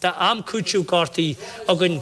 Tá am cúitimh gortaithe againn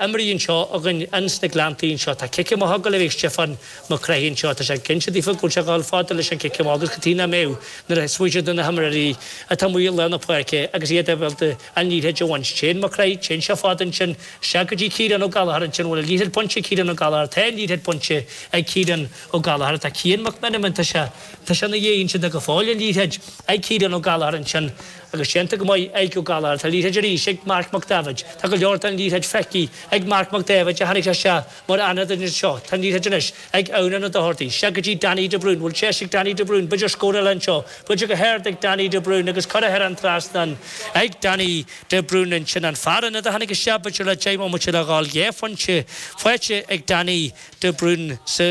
imrithe anseo againn ins na Gleanntaí anseo. Tá cic amach ag gabháil a bheith ag Stiofán Mac Craith anseo. Tá sé cinnte dearfa go bhfuil sé ag dul fada leis an gcic amach agus go dtí ná mbeidh nuair a smaoineoidh do na himreoirí atá amuigh i lár na páirce agus iad ag dul an liathróid a bhaint. Téann Mac Craith, téann sé fada ansin, isteach go dtí Ciarán Ó Gallachar ansin, an bhfuil an liathróid bainte ag Ciarán Ó Gallachar? Tá an liathróid bainte ag Ciarán Ó Gallachar. Tá Cian Mac Menamin, tá sé, tá sé ina dhiaidh ansin, tá go fóill an liathróid ag Ciarán Ó Gallachar ansin. agus déanta go maith ag Ó Gallchóir. Tá an liathróid ar ais ag Marc Mac Daibheid. Tá go leor den liathróid feicthe ag Marc Mac Daibheid a tháinig isteach mar ionadaí anseo. Tá an liathróid anois ag Eunan Ó Dochartaigh. Sea, go dtí Danny de Brún. Bhfuil deis ag Danny de Brún, b'fhéidir scór eile anseo. Buailte go hard ag Danny de Brún agus curtha thar an trasnán ag Danny de Brún ansin. An fear ionaid a tháinig isteach, b'fhéidir le deich mbomaite le dul, a chéad phointe faighte ag Danny. de Brún sa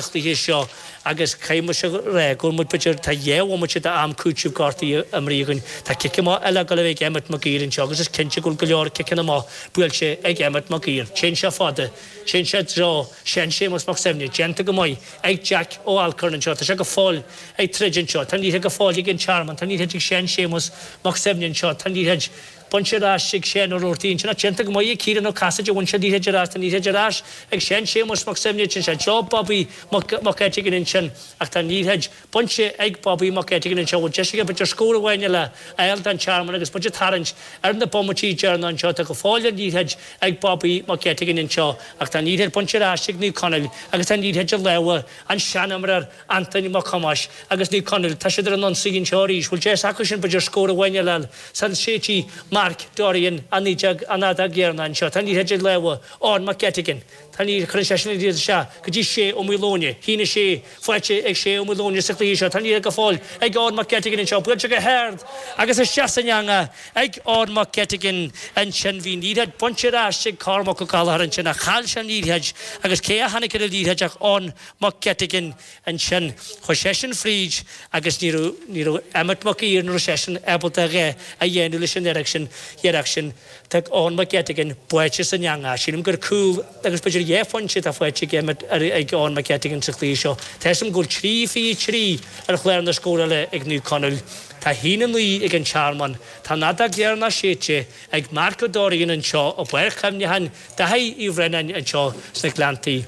chluiche seo agus caithfidh mise a rá go bhfuil muid b'fhéidir tá dhá bhomaite de am cúitimh gortaithe imrithe againn. Tá cic amach eile ag gabháil a bheith ag Emmet Mac Uidhir anseo agus is cinnte go bhfuil go leor ciceanna amach buailte ag Emmet Mac Uidhir. Téann sé fada. Téann sé i dtreo Sheáin Séamus Mac Suibhne. Déanta go maith ag Jack Ó Alcorn anseo. Tá sé go fóill ag troid anseo. Tá an liathróid go fóill ag an Tearmann. Tá an liathróid ag Seán Séamus Mac Suibhne anseo. Tá an liathroid. Bainte ar ais ag Seán Ó Ruairc ansin déanta go maith ag Ciarán Ó Casaide a bhain an liathróid ar ais. Tá an liathróid ar ais ag Seán Séamus Mac Suibhne téann sé i dtreo Bobby Mac Eiteagáin ansin ach tá an liathróid bainte ag Bobby Mac Eiteagáin anseo an bhfuil deis aige b'fhéidir scór amháin eile a fháil don Tearmann agus muid ag tarraingt ar na bomaití deireanacha anseo. Tá go fóill an liathróid ag Bobby Mac Eiteagáin anseo ach tá an liathróid bainte ar ais ag Naomh Conaill agus tá an liathróid i lámha an tseanfhondúir Antaine Mac Thomáis agus Naomh Conaill, tá siad ar an ionsaí anseo arís. Bhfuil deis acusan b'fhéidir scór amháin eile a fháil sula séidfidh Mark Dorrian, an réiteoir, an fheadóg dheireanach anseo. Tá an liathróid i lámha Eoin McGettigan. Tá an liathróid, cuireann sé sin an liathróid isteach go dtí Shay Ó Maoileoin. A haon 6, faighte ag Shay Ó Maoileoin sa chluiche seo. Tá an liathróid go fóill ag Eoin McGettigan anseo. Buailte go hard agus isteach san eangach ag Eoin McGettigan ansin. Bhí an liathróid bainte ar ais ag Cormac Ó Gallchóir ansin ach chaill sé an liathróid agus cé a tháinig ar an liathróid ach Eoin Mac Eiteagáin ansin. Chuir seisean fríd agus ní raibh, ní raibh Emmet Mac Uidhir, ní raibh seisean ábalta a dhath a dhéanamh leis an fhearg sin, iarracht sin. Tá Eoin Mac Eiteagáin buailte san eangach. Sílim gur cúl agus b'fhéidir dhá phointe atá faighte ag Emmet, ag Eoin Mac Eiteagáin sa chluiche seo. Tá 'fhios a'm go bhfuil trí fiche a trí ar chlár na scórála ag Naomh Conaill. Tá haon a naoi ag an Tearmann. Tá an fheadóg dheireanach séidte ag Mark Ó Doirnín anseo i bPáirc Chuimneacháin Dháithí Uí Bhraonáin anseo sna Gleanntaí.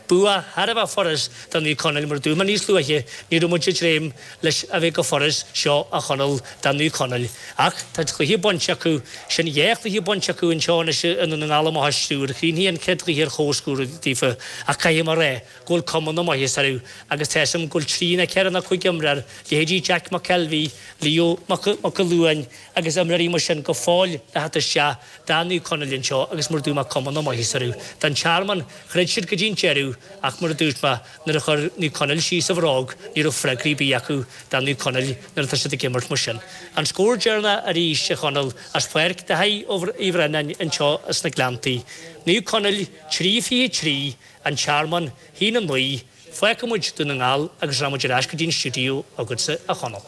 Bua thar a bheith furas do Naomh Conaill mar dúirt mé níos luaithe ní raibh muid ag dréim leis a bheith chomh furas seo a Chonaill do Naomh Conaill ach tá cluiche bainte acusan dhá chluiche bainte acu anseo anois i nDún na nGall amach as triúr chríochnaigh an chéad chluiche ar chomhscór daofa ach caithfidh mé a rá go bhfuil cuma na maitheasa orthu agus tá fhios agam go bhfuil trí ná ceithre ná cúig imreoir leithéidí Jeaic Mac Ceilbh Leo Mac Mac Mac Luain agus imreoirí mar sin go fóill le theacht isteach, do Naomh Conaill anseo agus mar a dúirt mé cuma na maitheasa orthu don Tearmann, throid siad go dtí an deireadh ach, mar a dúirt mé, nuair a chuir Naomh Conaill síos an bhróg, ní raibh freagraí ar bith acu do Naomh Conaill nuair atá siad ag imirt mar sin. An scór deireanach arís a Chonaill as Páirc Dáibhí Uí Bhraonáin anseo sna Gleanntaí. Naomh Conaill 3 23 An Tearmann, 1 9. Fágfaidh muid Dún na nGall agus seo muid ar ais go dtí an stiúideo agatsa, a Chonaill.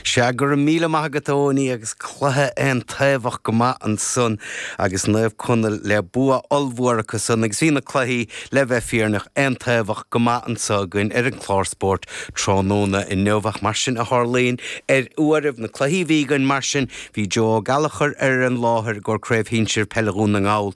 Sea, go raibh míle maith agat, a Eoiní, agus cluiche aontaobhach go maith ansan agus Naomh Conaill le bua ollmhór acu san agus bhí na cluichí, le bheith fírinneach, aontaobhach go maith anso againn ar an gclár spóirt tráthnóna inniu ach mar sin a tharlaíonn ar uairibh, na cluichí a bhí againn mar sin, Bhí Joe Ó Gallachair ar an láthair i gcomhair Craobh Shinsir Peile Dhún na nGall,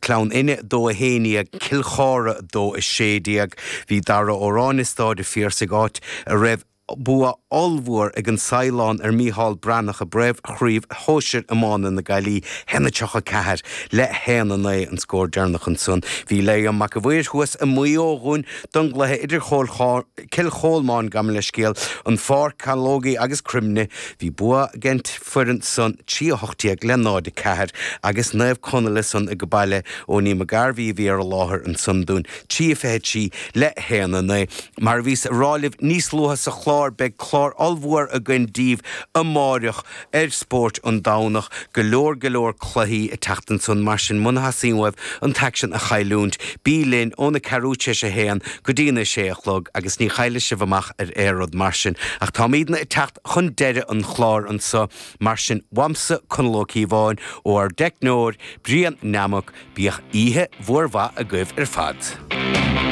Gleann Fhinne 2 11 Cill Chártha 2 16. Bhí Dara Ó Ráinne i Stáid a' Phiarsaigh áit a raibh bua ollmhór ag An Saighleán ar Micheál Breathnach i bPríomh-Chraobh Shóisir Iomána na Gaillimhe, 1 34 le 1 9 an scór deireanach ansan. Bhí Liam Mac a' Mhaoir thuas i Maigh Eo dhúinn don gcluiche idir Cill Chomáin, gabh mo leithscéal, an Pháirc, Caológaí agus Croimlinn. Bhí bua ag an bhfoireann san 3-18 le 0, 4 agus Naomh Conaill ansan ag baile, Eoiní McGarvey a bhí ar an láthair ansan dúinn, 3-23 le 1, 9. Mar a bhíos ag rá libh níos luaithe sa chlár, beidh clár ollmhór againn daoibh amáireach ar Spóirt an Domhnach, go leor go leor cluichí ag teacht ansan mar sin muna dteastaíonn uaibh an t-aicsean a chailliúint, bí linn óna ceathrú tar éis a haon go dtína sé a chlog agus ní chaillfidh sibh amach ar aon rud mar sin ach táimídne ag teacht chun deireadh an chláir anso, mar sin, uaimse, Conall Ó Cíobháin, ó ár dteicneoir, Brian Nammock, bíodh oíche mhór mhaith agaibh ar fad.